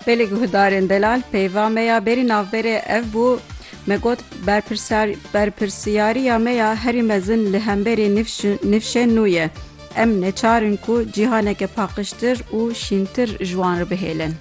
Belê guhdarên delal peyva me ya berî navberê ev bû, me got berpirsyariya me ya herî mezin li hemberî nifşên nû ye. Em neçar in ku cîhaneke paqijtir û şîntir ji wan re bihêlin.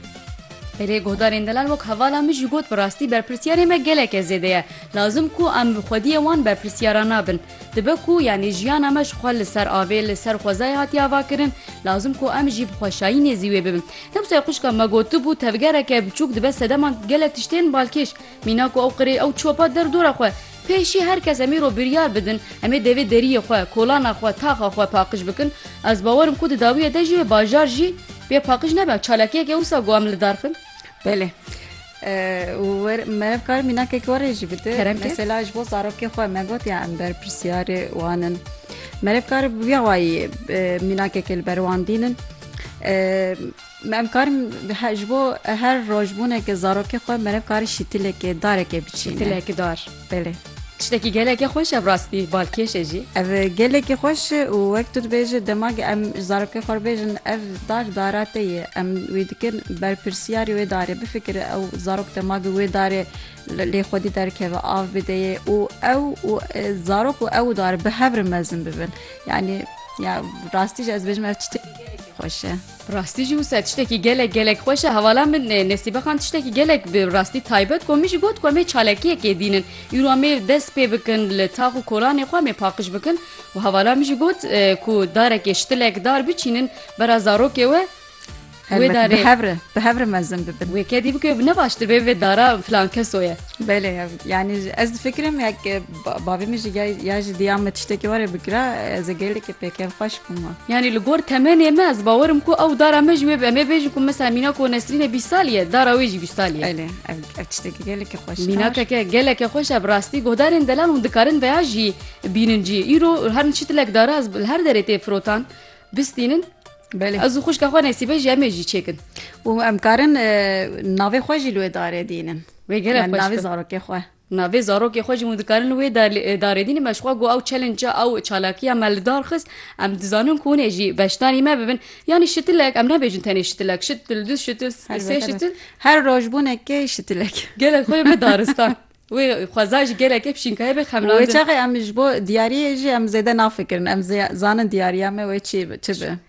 Belê guhdarên delal wek hevala min jî got bi rastî berpirsyarê me geleke zêde ye. Lazim ku em bi xwediyê wan berpirsyaran nabin. Dibe ku yanî jiyana me ji xwe li ser avê, li ser xwezayê hatiye avakirin, lazim ku em jî bi xweşayînê zî wê bibin. Ne wisa xwişka me gotibû, tevgereke biçûk dibe sedeman gelek tiştên balkêş. Mîna ku ew qirê, ew çopa der dora xwe. Pêşî her kes em îro biryar bidin, em ê devê deriyê xwe, kolana xwe, taxa xwe paqij bikin. Ez bawer im ku di dawiyê de jî wê bajar jî bê paqij nebe. Çalakiyeke wisa got em li dar bin? Belê. Û wer merev kar mînakek warê jî bide. Kerem ke? Mesela ji bo zarokê xwe me got ya em berpirsyarê wan in. Merev kar bi vîya wayî e, mînakekê li ber wan dînin. E, Me em karin he- ji bo her rojbûneke zarokê xwe merev karin şîtilekê, darekê biçînin. Dilekidar. Belê. Tiştekî gelekî xweş e bi rastî balkêş e jî. Ev gelekî xweş e û wek tu dibêje dema ku em ji zarokê xwe re bêjin ev dar dara te ye em wê dikin berpirsiyarê wê darê bifikire ew zarok dema ku wê darê lê xwedî derkeve av bide yê û ew û zarok û ew dar bi hev re mezin bibin yanî ya rastî jî ez dibêjim ev tiştekî gelekî xweş e. Bi rastî jî wisa tiştekî gelek gelek xweş e. Hevala min Nesîbexan tiştekî gelek bi rastî taybet got. Min jî got ku em ê çalakiyekê dînin. Îro em ê dest pê bikin li tax û kolanê xwe em ê paqij bikin û hevala min jî got ku darekê ştilek dar biçînin bera zarokê we wê darê bi hev re bi hev re mezin bibin. Wê kedî bike ne baştir bê vê dara filan keso ye. Belê yani ez difikirim yek Bavê min jî ya jî diya me tiştekî were bikira ez ê gelekî pê kevxweş bûma. Yanî li gor temenê me ez bawer im ku ew dara me jî wê bi em ê bêjin ku misal mînak û Nesrînê bîst salî ye dara wê jî bîst salî ye. Elê ev tiştekî gelekî xweş e. Mînakeke gelekî xweş e bi rastî guhdarên delal hûn dikarin veya jî bînin cî. Îro her min çitilek dara ez li her derê tê firotan bistînin. Belê. Ez û xwişka xwe nesîbe jî em ê jî çêkin. Û em karin navê xwe jî li wê darê dînin. Wê gelek xweş. Navê zarokê xwe. Navê zarokê xwe jî hûn dikarin wê darêdîn me ji xwe got ew challenge ew çalakiya me li dar xist em dizanin ku hûn ê jî beşdarî me bibin yanî şitilek em nabêjin tenê şitilek şitil du şitil sê şitil her roj bûnekê şitilek gelek xwe be daristan wê xweza jî gelekê pişînkaye be xemlandin. Wê çaxê em ji bo diyariyê jî em zêde nafikirin em zanin diyariya me wê çi bi.